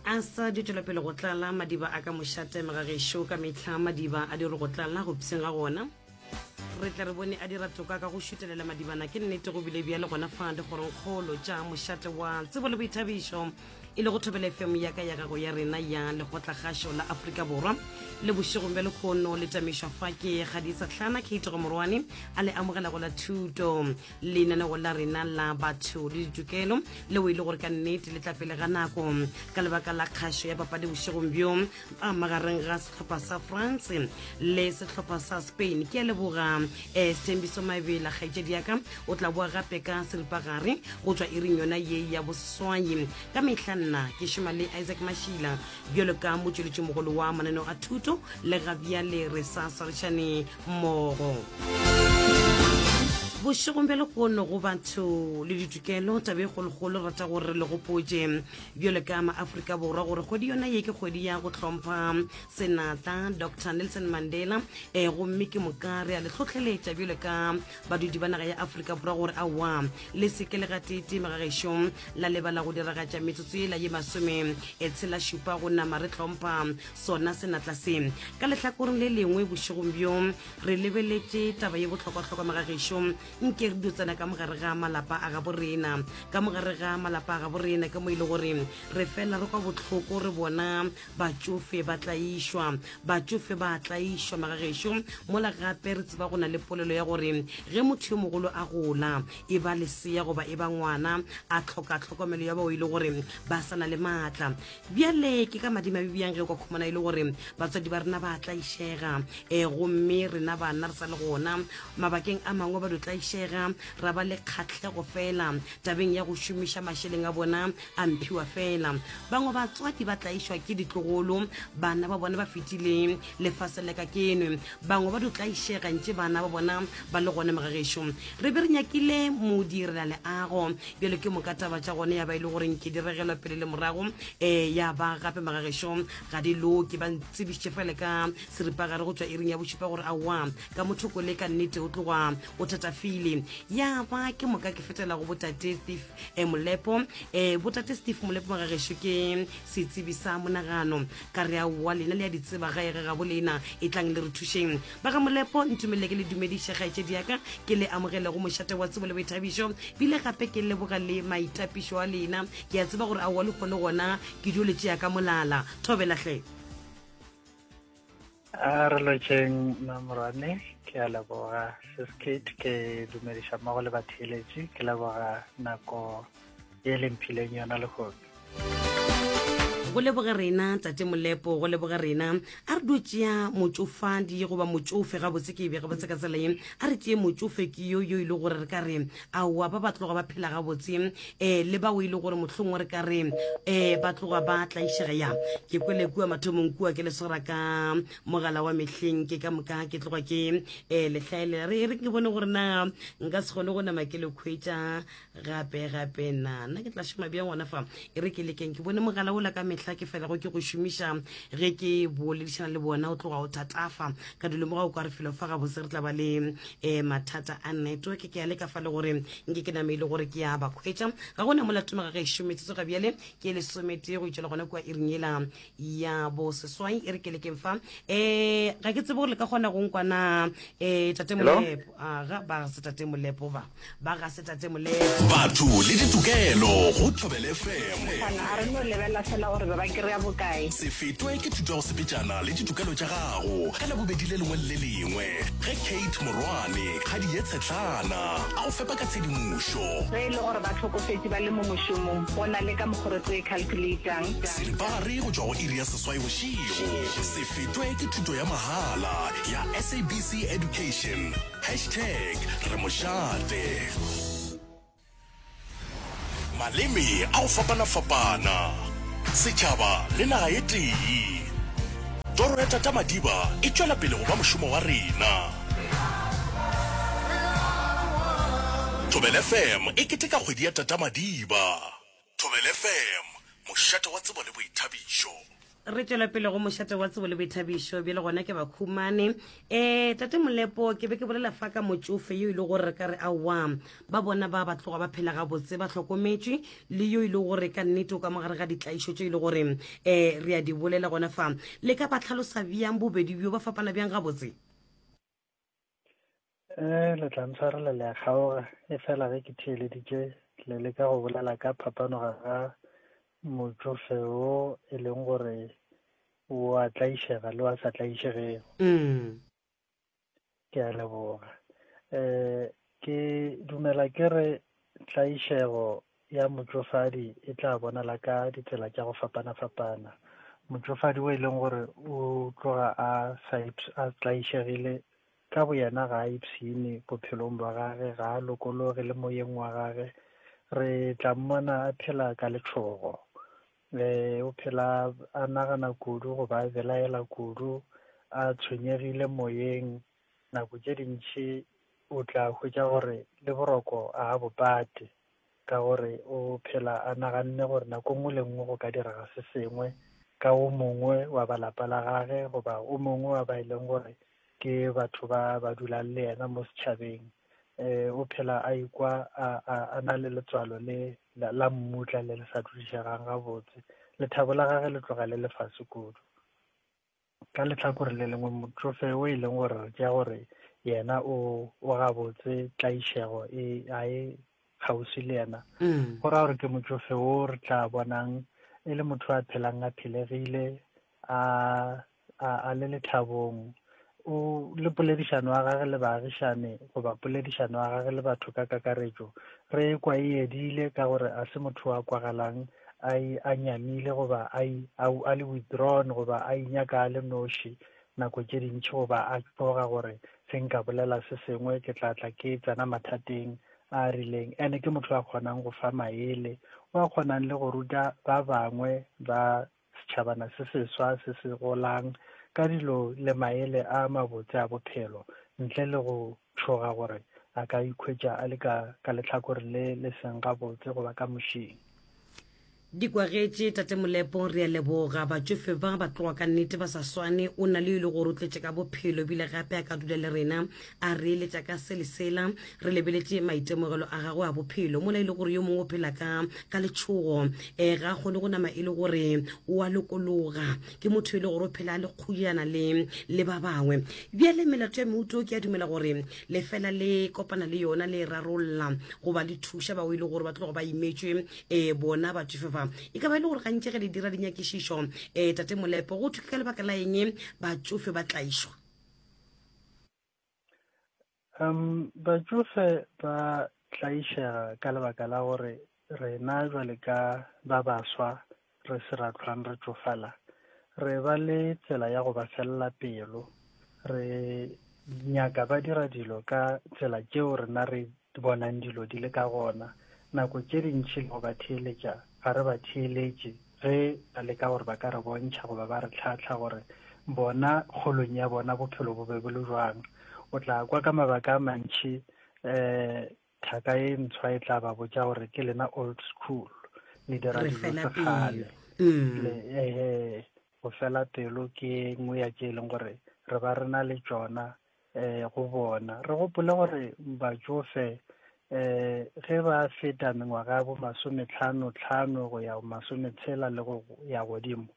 a sa di tšwela pele go tlala madiba a ka mošateme ga gešo ka metlha madiba a di re go tlala go pseng ga gona re tla re bone a dira toka ka go šutelela madibana ke nnete go bile bjale gona fa dikgorongkgolo tša mošate wa tsebo le boithabišo e le go thobela fm ya ka ya gago ya rena ya lekgotlakgašo la aforika borwa le bošegong bja lekgono le tamišwa fa ke ga di sa tlhana kate go morwane a le amogelago la thuto lenaneo la rena la batho le ditokelo leo e le gore ka nnete le tla pele ga nako ka lebaka la kgašo ya papadi bošegong bjo a magareng ga setlhopha sa france le setlhopha sa spain ke a leboga um setembiso mabela kgaetšedi yaka o tla boa gape ka seripagare go tswa e reng yona ye ya boseswai ka mehla nna ke šoma le isaac mašila bjalo ka motšweletšimogolo wa mananeo a thuto le gabjale re sa swarešane mmogo bošegong bja lekono go batho le ditokelo tabe e kgolokgolo rata gore le gopotse bjale ka maaforika borwa gore kgwedi yona ye ke kgwedi ya go hlompha senatla dr nelson mandela um gomme ke moka re a le tlhotlheletša bjale ka badudi ba naga ya aforika borwa gore aowa le seke le gatete magagešo la lebala go diragatša metsotso ela ye masome e tshela šupa go nama re hlompha sona senatla se ka lehlakoreng le lengwe bošegong bjong re lebeletše taba ye bohlokwahlokwa magagešo nke re dutsana ka mogare ga malapa a gabo rena ka mogare ga malapa a gabo rena ke mo e le gore re fela re kwa bohloko re bona batšofe ba tlaišwa batšofe ba tlaišwa magagešo mola gape re tseba go na le polelo ya gore ge motho yo mogolo a gola e ba lesea goba e ba ngwana a tlhoka tlhokomelo ya bao e le gore ba sa na le maatla Bjale ke ka madimabe bjang ge o ka khumana e le gore batswadi ba rena ba tlaišega um eh, gomme rena banna re sa le gona mabakeng a mangwe ba do tlaišega ra ba le kgatlhego fela tabeng ya go šomiša mašeleng a bona a mphiwa fela bangwe batswadi ba tlaišwa ke ditlogolo bana ba bona ba fetileng lefase leka kenwe bangwe ba do tlaišega ntše bana ba bona ba le gone magagešo re be re nyakile modirela leago bjalo ke moka taba tša gone ya ba e le goreng ke di regelwa pele le morago um ya ba gape magagešo ga di loke ba ntsebišitše fele ka seripagare go tswa iring ya bošupa gore aowa ka mothoko le ka nnete o tloga o thatafile ya ba ke moka ke fetela go botate steve um molepo um botate steve molepo magagešo ke setsebi sa monagano ka re aowa lena le ya ditseba ga ega gabo lena e tlang le re thušeng Ba ga Molepo, ntumelele ke le dumediše kgaetšedi ya ka, ke le amogele go mošate wa tsebo le boithabišo, bile gape ke leboga le maitapišo a lena. Ke a tseba gore a wa le kgone gona ke dio le tšea ka molala. Thobela hle. A re lotšeng Mamorwane, ke a leboga. Sis Kate, ke dumediša mmogo le batheeletši, ke leboga nako. e le mphileng yona lehono go leboge rena tate molepo go leboge rena a re dio tšea motsofadi goba motsofe gabotse ke e bega botse ka tsela e a re tseye motsofe ke yo yo e le gore re ka re aowa ba ba tloga ba phela gabotse um le bao e le gore mohlongwe re ka re um ba tloga ba tlaišega ya ke kwele kua mathomong kua ke leswara ka mogala wa mehleng ke ka moka ke tloga ke um lehlaelela re re ke bone gore na nka se kgone go nama ke le kgwetsa gape gape na nna ke tla šoma bjang gona fa e re ke lekeng ke bone mogala ola ka mehla ke felago ke go šomiša ge ke boledišana le bona o tloga o thatafa ka dilo moga o kwa re felo fa gabotse re tla ba le um mathata a network ke ya le ka fa le gore nke ke name e le gore ke ya ba kgwetša ga gona mola tomaga ge e šometsetso ga bjale ke lesometee go itšela gona kua iring ela ya bo seswai e re ke lekeng fa eh ga ke tsebe gore le ka kgona go nkwana eh tate molepo aga ba se tate molepo ba ba ga se tate molepo batho le ditokelo go thobele fm kana a re no lebela fela gore ba ba kry-a bokae se fetwe ke thuto ya go sepetšana le ditokelo tša gago ka labobedi le lengwe le le lengwe ge kate morwane kgadi ye tshetlana a go fepa ka tshedimošo ge e le gore ba tlhokofetše ba le mo mošomong go na le ka mokgoro tse e calculatang Dipagare go tšwa go iri ya seswai bošego. Se fetwe ke thuto ya mahala ya SABC Education. Hashtag re mo šate. maleme a go fapana-fapana setšhaba le naga e tee toro ya tata madiba e tšwela pele go ba mošomo wa rena thobel fm e keteka kgwedi ya tata madiba Thobela FM, mošate wa tsebo le boithabišo. Re tšwela pele go mošate wa tsebo le boithabišo bjale gona ke bakhumane um tate molepo ke be ke bolela fa ka motšofe yo e le gore re ka re aowa ba bona ba ba tloga ba phela gabotse ba tlhokometšwe le yo e le gore ka nnete o ka mogare ga ditlaišo tso e le gore um re a di bolela gona fa le ka ba tlhalosa bjang bobedi bjo ba fapana bjang gabotse Eh, le tla ntshwarela le a kgaoga e fela ge ke theeleditše le leka go bolela ka phapanoga ga motšofe wo e leng gore o a tlaišega le wa sa tlaišegego mm. ke a leboga um Ke dumela ke re tlaišego ya motšofadi e tla bonala ka ditsela tša go fapana-fapana. Motšofadi o e leng gore o tloga a sa a tlaišegile ka boyena ga a ipshine bophelong bwa gage, ga a lokologe le moyeng wa gage. Re tla mmona a phela ka letšhogo eh o phela a nagana kudu goba a belaela kudu a tshwenyegile moyeng Nako tše dintši o tla hwetša gore le boroko a a bo pate ka gore o phela a naganne gore nako nngwe le nngwe go ka direga se sengwe ka o mongwe wa ba lapa la gage goba o mongwe wa ba e leng gore ke batho ba ba dulang le yena mo setšhabeng. Um o phela a ikwa a, a, a na le letswalo le la, la mmutla le le sa dudišegang gabotse. Lethabo la gage le tloga le le fase kudu. Ka lehlakore le lengwe, motsofe o e leng gore re tšea gore yena o o gabotse tlaišego e a e kgauswi le yena mm. go raya gore ke motsofe o re tla bonang e le motho a phelang a phelegile a a le lethabong o le poledišano ya gage le baagišane goba poledišano ya gage le batho ka kakaretšo re kwa e edile ka gore a se motho wa kwagalang a e a nyamile goba a e a le withdrawn goba a inyaka a le noši nako tše dintši goba a tloga gore se nka bolela se sengwe ke tla tla ke tsena mathateng a rileng ene ke motho a kgonang go fa maele wa kgonang le go ruta ba bangwe ba setšhabana se seswa se se golang ka dilo le maele a mabotse a bophelo ntle le go tšhoga gore a ka ikhwetša a le ka, ka lehlakore le le seng gabotse goba ka mošing. Di kwagetše Tate Molepo, re a leboga. Batšofe ba, ba tloga ka nnete ba sa swane. O na le yo e le gore o tletše ka bophelo ebile gape a ka dula le rena a re eletša ka se le sela. Re lebeletše maitemogelo a gagwe a bophelo mola e le gore yo mongwe o phela ka, ka letšhogo. Ee, ga a kgone go nama e le gore o a lokologa. ke motho e le gore o phela le kgodiana le le ba bangwe bjale melato ya meuto ke a dumela gore lefela le kopana le yona le e rarolola goba le thuša bao e le gore ba tlogo ba imetšwe um eh, bona batsofe ba e ka ba e le gore gantši ge le dira dinyakišišo um tate molepo go thwe ka lebaka la eng batsofe ba tlaišwa Um, batšofe ba tlaišega ka lebaka la gore rena jwale ka ba baswa re se ra tlhwang re tšofala re ba le tsela ya go ba felela pelo re nyaka ba dira dilo ka tsela tšeo rena re di bonang dilo di le ka gona, nako tše dintši le go ba theeletša, ga re ba theeletše ge ba leka gore ba ka re bontšha goba ba re hlahla gore bona kgolong ya bona bophelo bo be bo le bjang. O tla kwa ka mabaka a mantši um thaka e ntshwa e tla ba botša gore ke lena old school le dira Re dilo fela sekgale pelo. Le- ehe go fela pelo ke nngwe ya tše e leng gore re ba re na le tšona um go bona. Re gopole gore batšofe um ge ba feta mengwaga ya bo masometlhano tlhano go ya masometshela le go ya godimo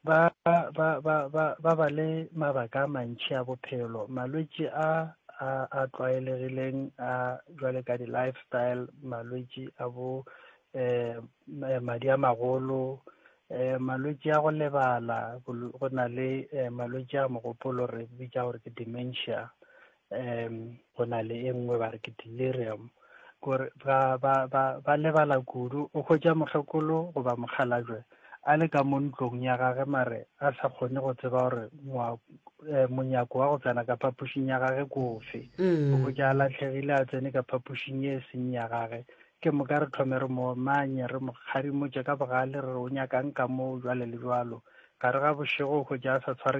ba ba ba ba ba ba le mabaka a mantšhi a bophelo malwetši a a a tlwaelegileng a jwale ka di-lifestyle malwetši a bo um madi a magolo Eh, malwetši a go lebala, go na le eh, malwetši a mogopolo re bitša gore ke dementia. Um, go na le e nngwe ba re ke delirium. Gore ba, ba, ba, ba lebala kudu, o hwetša mohlokolo goba mokgalajwe a le ka mo ntlong ya gage mare a sa kgone go tseba gore eh, monyako wa go tsena ka phapošing ya gage kofe mm. o ja a latlhegile a tsene ka phapošing e seng ya gage Ke moka re thome re mo omanye, re mo kgadimotše ka bogale, re re, O nyaka'ng ka moo, bjale le bjalo? Gare ga bošego, hwetša a sa tshware ke.